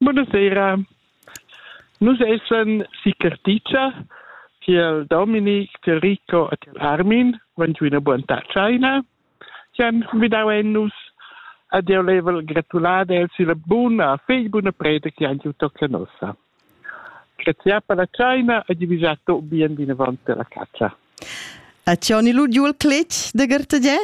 Bunasera. Nus essan si Carticia tiel Dominic, tiel Rico e tiel Armin, van giu ina buonta tscheina chi han convidau ein nus ed jeu level gratular els illa buna fegl buna preda chi han giu tocca nossa. Grazie per la tscheina e di visar tot bien vinavant per la caccia. E ti oni lu giu il cletg de gartagè?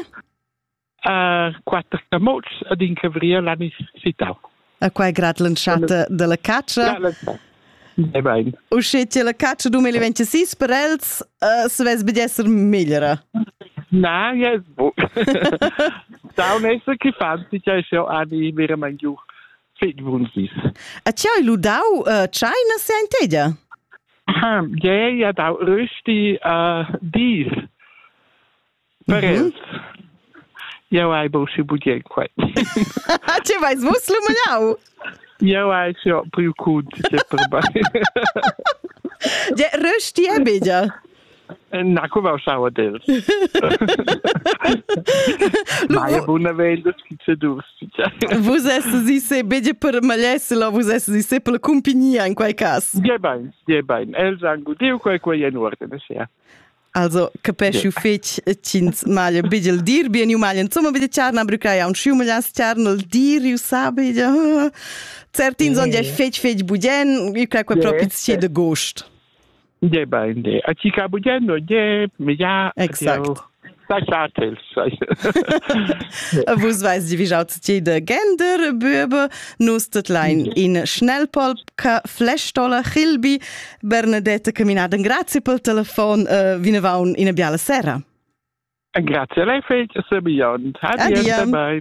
a quatter camotgs ad in cavrier l'anni citau. A quai grad l'entschatta della caccia? Ja, Nein. Usche che la caccia 2026 per els uh, se vess bed esser meglera. Na, ja, bo. Daun esser che fanti ja schau ani verament giu fit bunsis. A che hai ludau uh, China se ein tedia? Ja, ja dau rösti uh, dis Per els. Jau hai busi budien quai. Ti vais vus lumignau? Jau hai jo priu cun ti per mai. De röst die bidia? Na, cu vau sau del. Mai e buna velha schizedus. Vus essi se bege per malessela, vus essi se per compagnia in quei cas. Die bein, die bein. Els han gudiu quei quei en ordine sia. Also, capisci fetg ch'ins maglia bigel dir bien u maglia insomma bitte charna brucai a un schiumaglias charna il dir u sabi certins on gei fetg fetg bugen i cra quei proprio sce de gost de ba de a chi ca bugen no de me ja exact sa Vus veis vi jau ti de gender böbe nus det lein in schnellpolp che flestola Chilbi Bernadette caminada in grazie pel telefon uh, vinavaun in biala sera. Grazie lei fetg, Sabian. Adieu, bye.